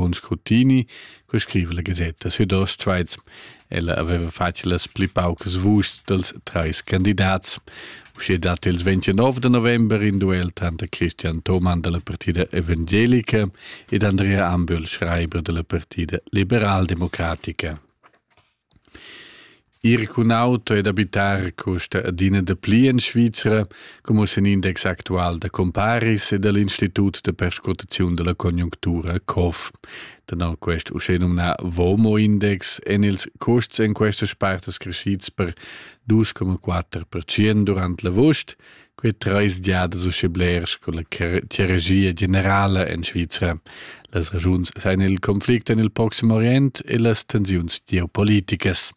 buon scrutini, co scrive la Gazetta Südostschweiz. Ella aveva fatg las pli paucas vuschs dels trais candidats. Usce dat il 29 de november in duel tanter Christian Thomann della Partida Evangelica ed Andrea Ambühl, schreiber della Partida Liberaldemocratica. Ir cun auto ed abitar custa adina dapli en Svizra, como sen index actual da comparis e dal Institut da perscrutaziun da la conjunctura COF. Tenor quest uschè nomnà VOMO-index èn ils custs en questas partas crescids per 2,4% durant l'avust Quei treis giadas uschè bler sco la hierarchia generala en Svizra. Las raschuns sein il conflict en il Proxim Orient e las tensiuns geopoliticas.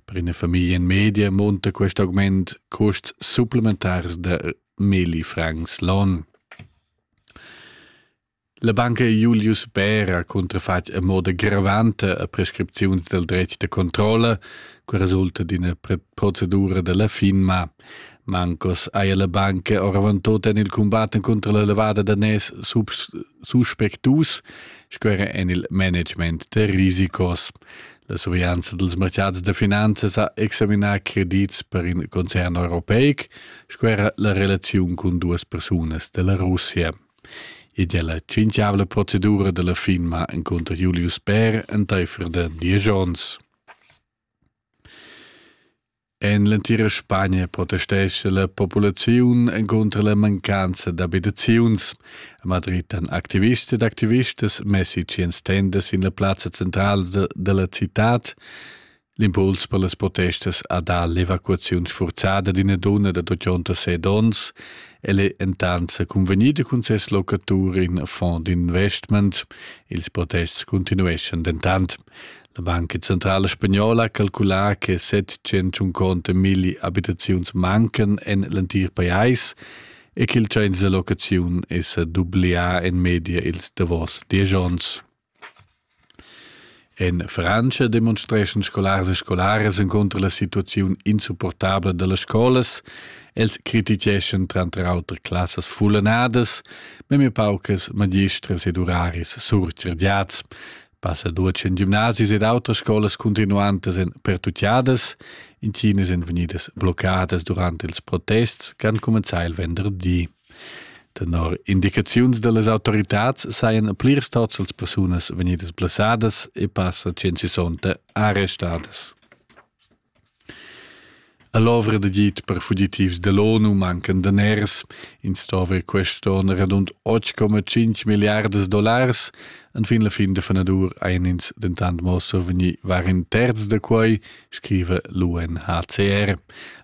Per ina famiglia in media monta quest augment custs supplementars da milli francs l'on. La banca Julius Bär ha cuntrafatg a moda gravanta a prescripziuns del dretg da controlla, che resulta d'ina procedura della FINMA. Mancos haja la banca oravant tot en il combatten contro la levada da nes suspectus, sco era en il management da risicos. La surveglianza dels mercats da finanzas ha examinà credits per in concern europeic, sco era la relaziun con duas persunas della Russia. e della cinchiavla procedura della firma encunter Julius Bär enteifer da diesch ons. En l'entira Spagna protestesce la populaziun encunter la mancanza d'abitaziuns. A Madrid han activists ed activistas messi ciens tendas sin la plazza centrala de, della cittad L'impuls per las protestas ha dà l'evacuaziun sfurzada d'ina donna da 86 onns. El è entant sa cunvegnida cun ses locatur in fond d'investment. Ils protests continueschan dentant. La Banca Centrala Spagnola ha calculà che 701 conte milli abitaziuns mancan en l'entir pajais e ch'il tschains da locaziun è sa dublià en media ils davos diesch onns. En Frantscha demonstreschan scolars e scolaras encunter la situaziun insupportabla dallas scolas. Els criticheschan tranter auter classas fullanadas, memia paucas magistras ed uraris surcirdiats. Passa duatsch en gimnasis ed autras scolas continuantas en pertucciadas. Intinas èn vegnidas bloccadas durant ils protests che han cumenzà il venderdi. Tenor indicaziuns dallas autoritads sajan plirs tots las persunas vegnidas blessadas e passa 160 arrestadas. All'ovra da git per fugitivs dell'ONU mancan daners. In stava er quest'on radund 8,5 milliardas dollars. Enfin la fin da fenadur ein ins dentant mo survegni var in terz da quei, scrive l'UNHCR.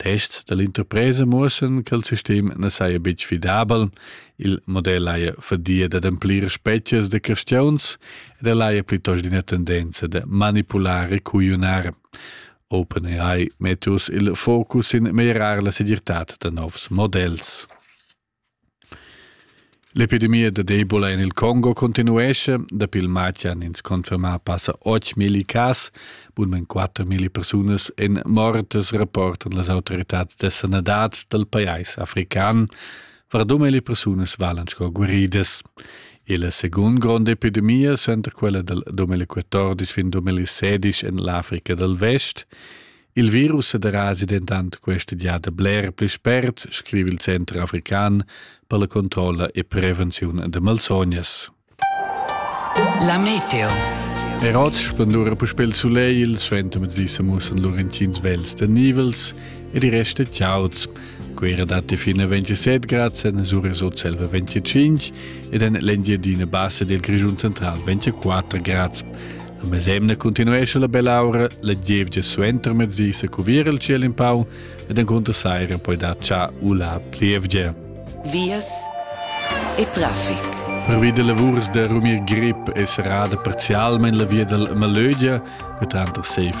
Tests dall'interpresa muossan ch'el sistem na saja betg fidabel, il model haja fadia dad amplir spezias da cristiauns ed el haja plitost ina tendenza da manipular e cugliunar. OpenAI metta uss il focus sin meglierar la segirtad da novs models. L'epidemia dad Ebola en il Congo continuescha. Dapi il matg han ins confermà passa 8.000 cas. Bunmain 4.000 persunas èn mortas, rapportan las autoritads da sanadad dal pajais african. Vardum e persunas valan sco guaridas. E la segunda gronda epidemia center quella dal 2014 fin 2016 en l'Africa dal Vest. Il virus derasi dentant questa giada bler pli spert, scriva il Center african per la controlla e prevenziun da malsognas. La meteo. Er oz spendura puspè il sulegl, il suentermezdi se mussan Laurentins vels de nivels e di resta ciauts. Quera datti fino a 27 grad, en Sura sot selva 25 ed en l'Engiadina bassa del Grigiun central 24 grad. A mesemna continuescha la bell'aura la gievgia suenter mezdi se cuvir il ciel in pau ed encunter saira poi dar cha u la plievgia. Vias e traffic. Pervi da lavurs da rumir grip e serrada parzialmain la via dal Malögia, che tranter sei